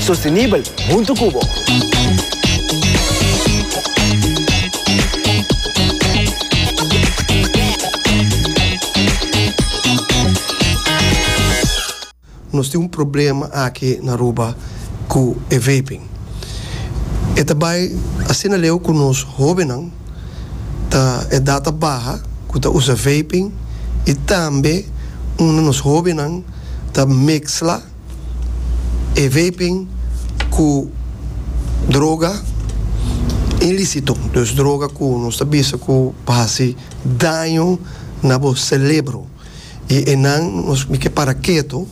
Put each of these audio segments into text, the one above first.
sostenibel huntu ku bo. Nos tin un problema aki na Aruba ku e vaping. E ta bai asina leu ku nos hobennan ta edat ta baha ku ta usa vaping i tambe unda nos hobennan ta meksla. e vaping ku droga inlisito, dus droga ku nos ta bisa ku por hasi daño na bo selebro i e nan nos mi ke para ketu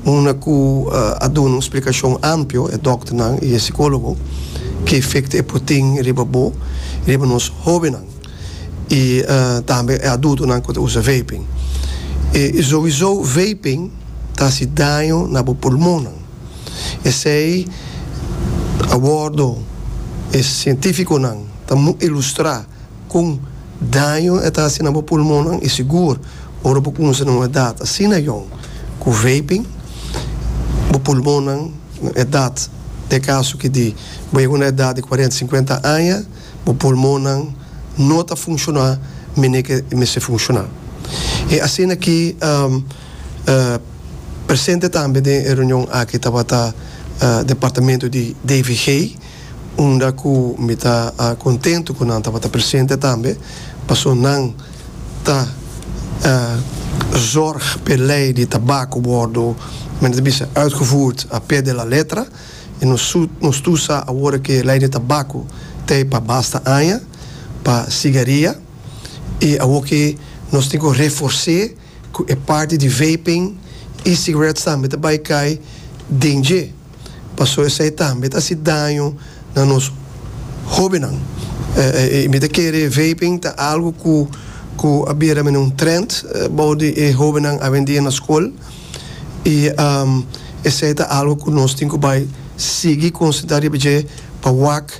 unda ku a duna un splikashon ampio e dokternan i e sikologo ke efekto e por tin riba bo i riba nos hobennan. y tambe e adultonan cu ta usa vaping. Y sowiso vaping ta haci daño na bo pulmonnan. Esey a wordo e cientificonan ta muy ilustra con daño e ta haci na bo pulmonnan y sigur ora bo cunsa na un edad asina yong cu vaping bo pulmonnan na edad, den e caso cu di bo yega na edad di cuarenta, cincuenta aña, Bo pulmonnan no ta funciona mene ke e mester funciona. E asina ki presente tambe den e reunion aki tabata departamento di DVG unda ku mi ta contento ku nan tabata presente tambe paso nan ta zorg p'e ley di tabaco wordo men ta bisa uitgevoerd a pie de la letra. E nos ta usa awor ke lei de tabako tei pa basta aña pa sigaria i awor ke nos tin ku reforse ku e parti di vaping i sigaret tambe ta bai kai den dje paso esei tambe ta hasi daño na nos hobennan i mi ta kere vaping ta algu ku a bira mende un trend bou di e hobennan awendia na skol. i esei ta algu ku nos tin ku bai sigui konsentrá riba dje pa wak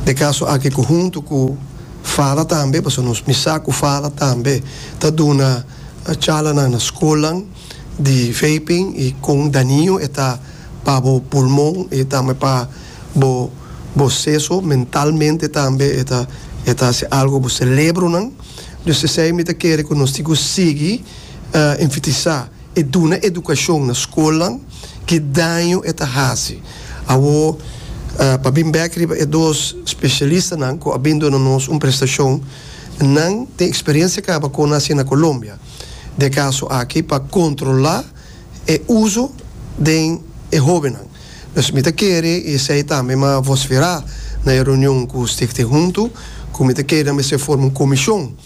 de kaso aki ku huntu ku Fala tambe, pasobra nos misa ku Fala tambe ta duna chalanan na skolnan di vaping i kon daniño e ta pa bo pulmon i tambe pa bo boseso, mentalmente tambe e ta e ta hasi algu ku bo selebronan. Dus esei mi ta kere ku nos tin ku sigui. enfatisá e duna edukashon na skolnan, ki daño e ta hasi. Awor, pa bin bèk riba e dos spesialistanan ku a bin duna nos un prestashon, nan tin eksperiensia kaba kon a hasi na Kolombia dje kaso aki pa kontrolá e uso den e hóbennan. Pues mi ta kere i esei tambe mi a vosferá na e reunion ku Stichting Huntu, ku mi ta kere nan mester forma un komishon,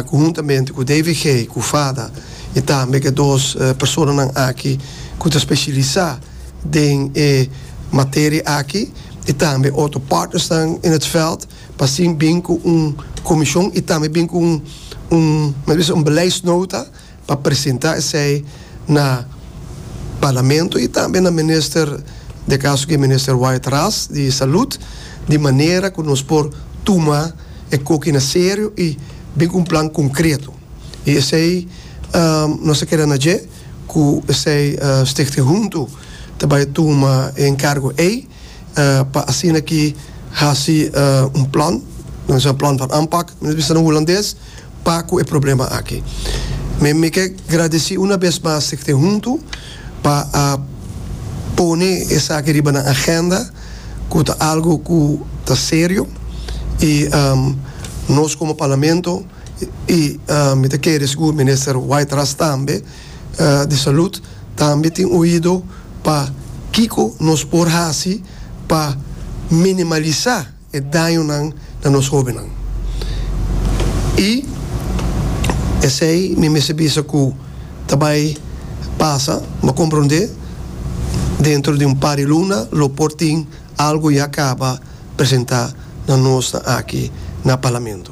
cu huntamente cu David Gay cu Fada y tambe ke dos personanan aki cu ta specialisa den e materia aki y tambe otro partnersnan in het veld pa así bin cu un comision y tambe bin cu un, men ta bisa, un beleidsnota. pa presenta esey na Parlamento y tambe na Minister, de caso aki Minister Wyatt Ras di Salud, di manera cu nos por tuma e coki na serio y bin cu un plan concreto. Y esey nos ta keda na dje cu esey Stichting Huntu ta bay tuma e encargo ey. pa asina ki hasi un plan nan bisa plan van aanpak nan bisa na hulandes pa ku e problema aki mi mi ke gradisi una bes mas e te huntu pa a pone esaki riba nan agenda ku ta algu ku ta serio i nos komo parlamento i mi ta kere sigur minister White Ras tambe di salud tambe tin oido pa kiko nos por hasi pa minimalisá e dañonan na nos hóbennan. I esei mi mester bisa ku ta bai pasa, bo komprondé, dentro di un par di luna lo por tin algu ya kaba presentá na nosnan aki na Parlamento.